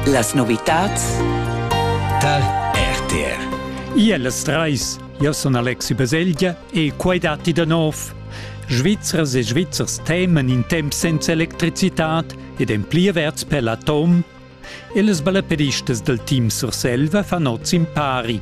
Las novitads tal RTR. Iellas treis, io sun Alexi Baselgia e quai datti da nov. Svizzers e Svizzers temen in temp senza electricitat ed en pli averts per l'atom. E les balleperistas del team Surselva fan oz impari.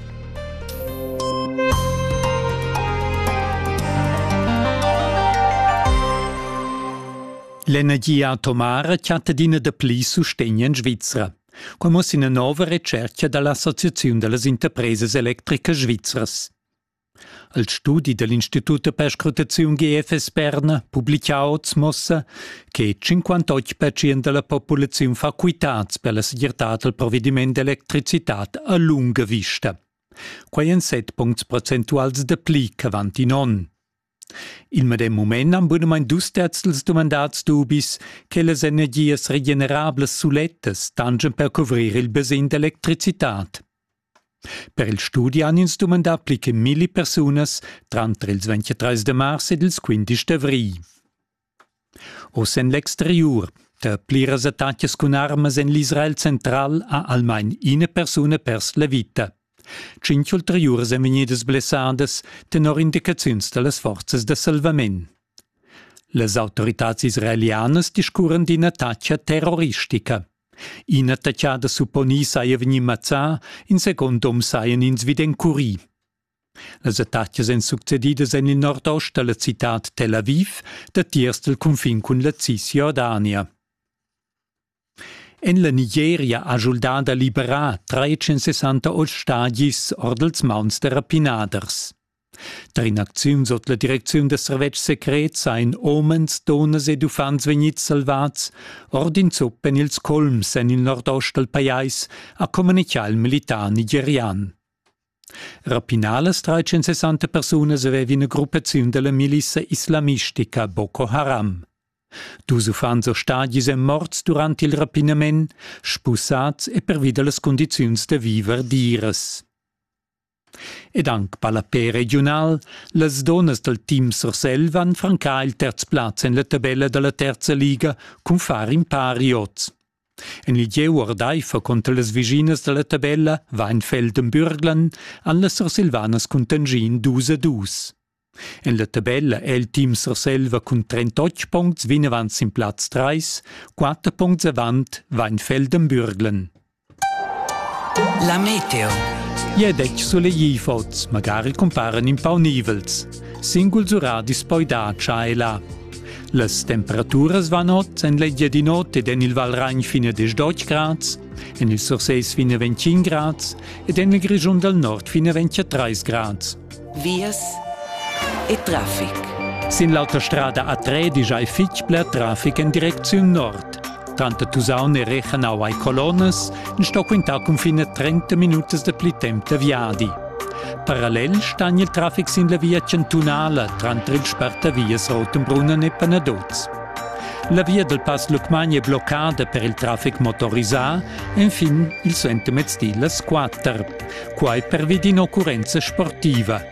L'energia atomara chatta adina da pli sustegn en Svizra. Quai muss ina nova retschertga da l'Associaziun da las interpresas electricas svizras. Al studi da l'Institut per scrutaziun GFS Berna publica oz mossa che 58% da la populaziun fa quitads per la segirtad dal provediment d'electricitad a lunga vista. Quai èn set puncts procentuals da pli ch'avant in onn. Il medem mument han bunamain dus terzels dumandats dubis che las energias regenerablas sulettas tanschan per cuvrir il basegn d'electricitad. Per il studi han ins dumandà pli che milli persunas tranter ils 23 de mars ed ils 15 d'avrigl. Oz en l'exteriur tar pliras attacas cun armas en l'Israel central ha almain ina persuna pers la vita. Tschintg ulteriuras èn vegnidas blessadas tenor indicaziuns da las forzas da salvament. Las autoritads israelianas discurran d'ina attacca terroristica. In'attacchada supponì saja vegnì mazzà, in second um sajan ins vid encurì. Las attacas èn succedidas en il nordost da la citad Tel Aviv datiers dal cunfin cun la Cisjordania. En la Nigeria ha schuldà da liberar 368 stadis ord ils mauns da rapinaders. Tar in'acziun sut la direcziun da servetsch secret sain omens, dunnas ed uffants vegnids salvads ord in zupp en ils colms en il nordost dal pajais, ha communitgà il militar nigerian. Rapinalas tra 160 persunas aveva ina gruppaziun dalla milissa islamistica Boko Haram. Dus uffants e stadis èn morts durant il rapinament, spusads e pervi da las cundiziuns da viver diras. Ed anc ballapè regiunal, las dunnas dal team Surselva han francà il terz plaz en la tabella da la terza liga cun far in pari oz. En il gieu ordaifer cunter las vischinas da la tabella Weinfeldenbürglern han las Sursilvanas cuntanschì in dus a dus. En la tabella è il team Surselva cun 38 puncts vinavant sin plaz 3, 4 puncts avant Weinfeldenbürglern. La meteo. Ie detg sulegli fots, magari cumparen in pau nivels. Singuls uradis poi da cha e là. Las temperaturas van ot en l'Engiadinot ed en il Valragn fine 18 grads, en il Surseis fine 25 grads ed en il Grischun dal Nord fine 23 grads. Vias e traffic. Sin l'autostrada a Tredi giai fitg bler traffic en direcziun nord. Tanter Tusaun e Rechenau ai colonnas sto quintar cunfin a 30 minutas da pli temp da viadi. Parallel stan il traffic sin la via chantunala tranter il spartavias Rotenbrunnen e Panaduz. La via dal Pass Lucmagni è bloccada per il traffic motorisà enfin il suentermezdi las 4, quai pervi d'ina occurrenza sportiva –